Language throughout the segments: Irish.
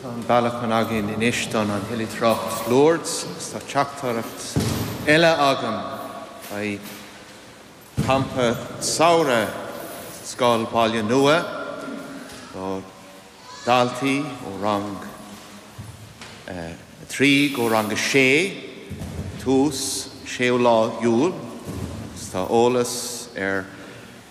Tá an bailiúchán againn anois don an oilithreacht Lourdes agus tá teachtaireacht eile againn beidh campa samhraidh Scoil Baile Nua do daltaí ó rang a trí go rang a sé tús séú lá Iúil. Tá eolas ar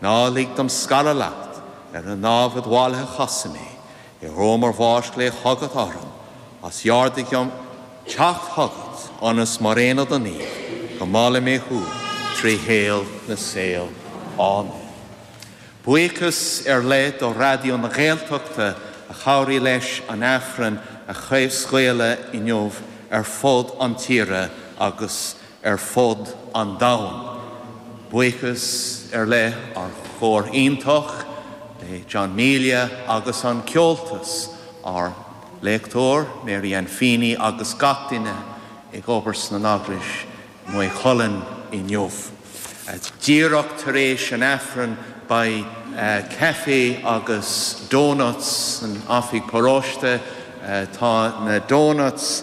Ná lig dom scaradh leat, ar an námhaid mhallaithe cosain mé, in uair mo bháis glaoigh chugat orm agus ordaigh dom teacht chugat, ionas mar aon le do naoimh go molfaidh mé thú trí shaol na saol. Áiméan. Buíochas ar leith do Raidió na Gaeltachta a chabhraigh leis an Aifreann a chraobhscaoileadh inniu ar fud an tíre agus ar fud an domhain. Buíochas ar leith ár chór iontach le John Melia agus an Ceoltas, ár léachtóir Mary Ann Feeney agus gach duine ag obair sna nEaglais i Maigh Chuilinn inniu. Díreach tar éis an Aifrinn beidh caife agus doughnuts san oifig paróiste. Tá na doughnuts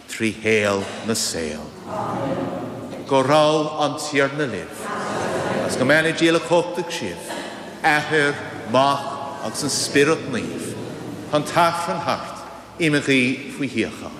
trí shaol na saol. Amen. Go raibh an Tiarna libh, agus go mbeannaí Dia uilechumhachtach sibh, Athair, Mac agus an Spiorad Naomh, tá an tAifreann thart, imigí faoi shíocháin.